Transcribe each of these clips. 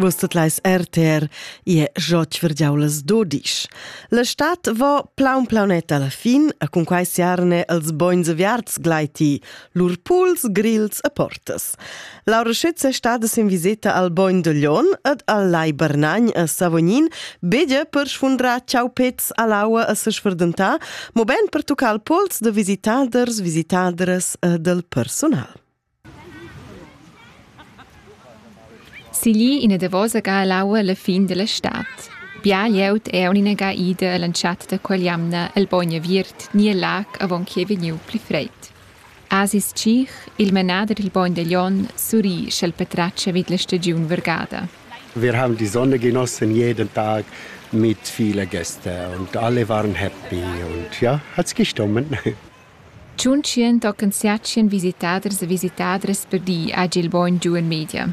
Vus tot leis RTR e jot verdiaulas dodisch. La stat vo plaun plaunet alla fin a cun quai siarne els boins aviarts glaiti, lur puls, grils e portas. Laura Schütz è stada in visita al Boin de Lion ed al Lai Bernagn a Savognin, bege per sfundrar ciao pets a l'aua a se sferdentà, mo ben per tocar il pols de visitaders, visitadres e del personal. Siglì ina davosa ga l'aua alla fin dalla stad. Bia glieud è aunc ga ida all'entschatta da quell'jamna el bogn aviert ni el lag avon ch'ei vegniu pli freid. Asis Tschich, il manader dil bogn da Glion, surri sch'el patratga vid la stagiun vargada. Wir haben die Sonne genossen jeden Tag mit vielen Gästen und alle waren happy und ja, hat's gestummen. Tschuntschien tochen siatschien visitaders e visitadras per di hagi il bogn giu en media.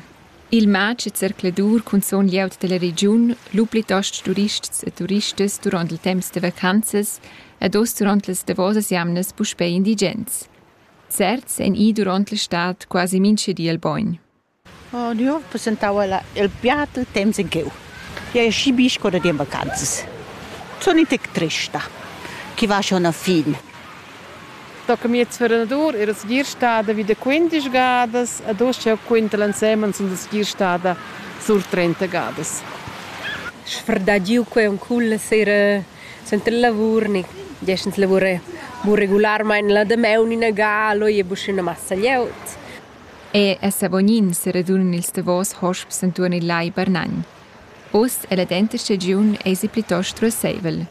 Il matg e zercladur cunzun glieud dalla regiun, lu plitost turists e turistas duront il temps da vacanzas ed oz duront las davosas jamnas puspei indigens. Certs ein i duront la stad quasi mintga di al bogn. Oh Diu, passentau ella il piat il temps in cheu. Jeu hai schi bi sco da dir vacanzas. Sun in tec trista, che va schon a fin. Tocca miez fernadur era segir stada vi da quindisch gadas ed oz jau quinta l'ensemen sun segir stada sur trenta gadas. Sfrdagiu quei on culla sera suenter il lavur ni gest ins lavura bu regularmein la damaun ina ga, leu ei buca ina massa glieud. E a Savognin seradunan ils davos hosps entuorn il Lai Barnagn. Uss è la denta stagiun èsi plitost ruasseivel.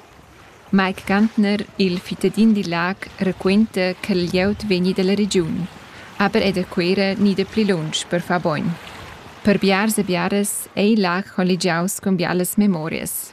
Mike Gantner, il fittadin dil lag, raquenta che il glieud vegni dalla regiun, aber è da Cuera ni da pli lunsch per far bogn. Per biars e biaras ei il lag colligiaus cun bialas memorias.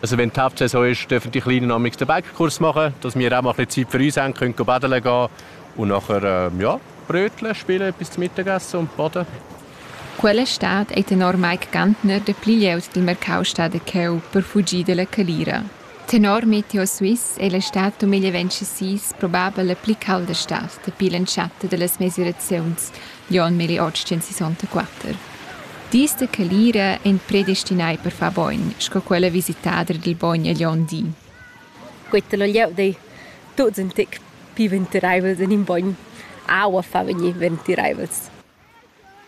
Also wenn die Hauptsaison ist, dürfen die Kleinen noch den Bäckerkurs machen, dass wir auch mal ein bisschen Zeit für uns haben können, baden gehen und nachher ähm, ja, Brötchen spielen bis zum Mittagessen und baden. Quella stad ei tenor Mike Gantner de pli lieus dil mercau stada cheu per fugir dalla calira. Tenor Meteo Swiss è la stad 2026 probabel la pli calda stad dapi l'entschatta da las mesiraziuns, Jon Milli otschentisontaquatter. Dis da calira ein predestinai per far bogn, sco quella visitader dil bogn egl onn di. Quetta lo glieud ei tuts in tec pli ventireivels en in bogn. Aua fa vegnir ventireivels.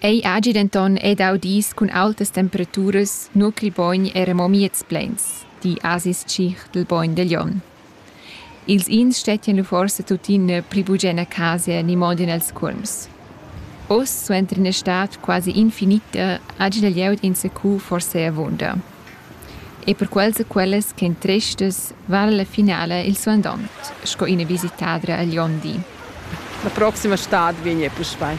Ei hagi denton ei dau dis cun aultas temperaturas, nua ch'il bogn era mo miez pleins, di Asis Tschich dil bogn da Jon. Ils ins stettien lu forsa tuttina pli bugen a casa ni mo en els cuolms. Oz, suenter ina stad quasi infinita, hagi la glieud enzacu forsa avunda. E per quels e quellas ch'ein trestas vala la finala il suandont sco ina visitadra agl onn di. La proxima stad vegn ei puspei.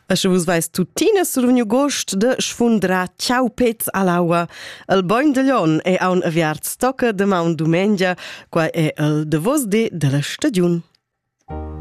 E sche vus veis tuttina survegniu gost de sfundra ciau pez all'aua, el boin de Lion è aun aviart stocca de maun dumengia, quai è el de vos di della stagiun.